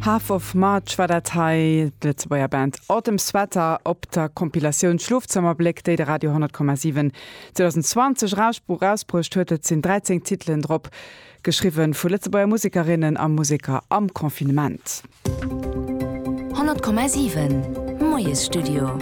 Half of March war dat hei, d'Lëtzebuerger Band Autumn Sweater op der Compilatioun Schlofzëmmerbléck, déi de Radio 10,7 2020 erausbruecht huet. Et sinn 13 Titelen drop, geschriwwe vu Lëtzebuerger Musekerinnen a Museker am Confinement. 100,7 Moiesstudio.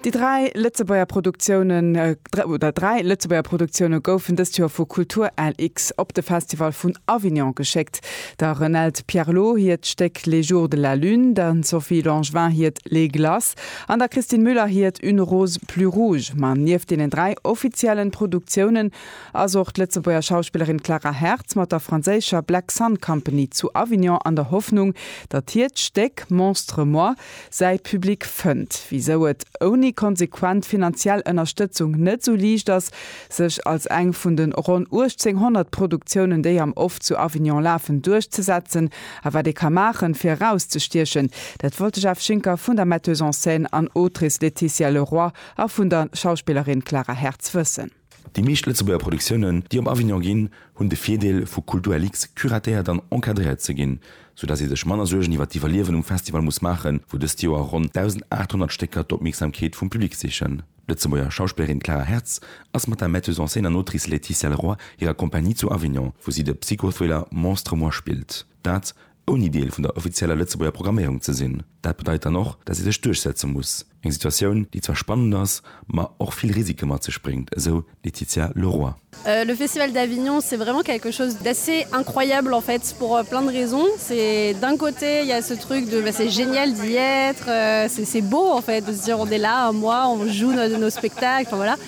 Déi dräi Lëtzebuerger Produktioune oder dräi Lëtzebuerger Produktioune goufen dëst Joer vu Kultur LX op de Festival vun Avignon geschéckt, der Renelde Pierlot hiert Stéck Les jours de la lune, der Sophie Langevin hiert Les glaces an der Christine Müller hiert Une rose plus rouge. Ma nieft deenen dräi offiziellen Produktiounen ass och d'Lëtzebuerger Schauspillerin Clara Hertz mat der franséischer Black Sun Company zu Avignon an der Hoffnung, datt hiert Stéck Monstre moi säi Public fënnt, wisou et ouni konsequent finanziell Ënnerstëtzung net sou liicht ass, sech als eng vun de ronn 1800 Produktiounen, déi am Off zu Avignon lafen, duerchzesetzen, a wat ee ka maachen, fir erauszestiechen. Dat wollt de Jeff Schinker vun der Metteuse en scène an Autrice Laetitia Leroy a vun der Schauspillerin Clara Hertz wëssen. Déi meescht Lëtzebuerger Produktiounen, déi op Avignon ginn, hunn de Virdeel, vu Kulturellix curatéiert an encadréiert ze ginn, sou dass ee sech manner Suergen iwwer d'Iwwerliewen um Festival muss maachen, wou dëst Joer ronn 1.800 Stécker d'Opmierksamkeet vum Public sichen. D'Lëtzebuerger Schauspillerin Clara Hertz ass mat der Metteuse en scène an Autrice Laetitia Leroy hirer Compagnie zu Avignon, wou si de Psychothriller Monstre-moi spillt. Dat ouni Deel vun der offizieller Lëtzebuerger Programméierung ze sinn. Dat bedeit dann och, datt ee sech duerchsetze muss. Eng Situatioun, déi zwar spannend ass, ma och vill Risike mat sech bréngt, esou d'Laetitia Leroy. Le Festival d'Avignon, c'est vraiment quelque chose d'assez incroyable en fait pour plein de raisons. C'est d'un côté il y a ce truc de c'est génial d'y être, c'est beau en fait de se dire on est là un mois, on joue nos spectacles, enfin voilà.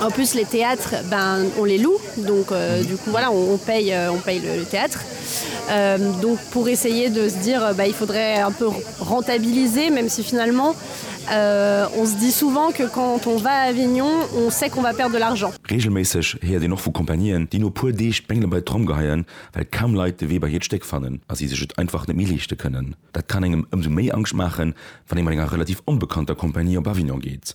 En plus les théâtres ben on les loue donc euh, du coup voilà on paye euh, on paye le, le théâtre euh, donc pour essayer de se dire ben, il faudrait un peu rentabiliser même si finalement euh, on se dit souvent que quand on va à Avignon on sait qu'on va perdre de l'argent. Reegelméisseg héiert een och vu Compagnieen, déi no puer Deeg d'Bengele bei d'Tromm geheien, well kaum Leit de Wee bei hiert Stéck fannen a si sech et einfach net méi leeschte kënnen. Dat kann engem ëmsou méi Angscht maachen, wann ee mat enger relativ onbekannter Compagnie op Avignon geet.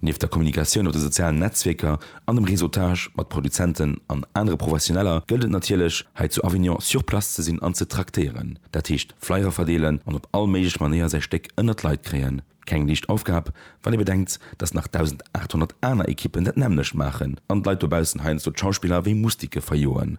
Nieft der Kommunikatioun op de sozialen Netzwierker an dem Réseautage mat Produzenten an anere Professioneller gëllt et natierlech, hei zu Avignon sur place ze sinn an ze traktéieren. Dat heescht Flyer verdeelen an op all méiglech Manéier säi Stéck ënnert d'Leit kréien. Keng liicht Aufgab, wann ee bedenkt, datt nach 1.800 aner Ekippen dat nämmlecht maachen an d'Leit dobaussen heiansdo d'Schauspiller wéi Mustike verjoen.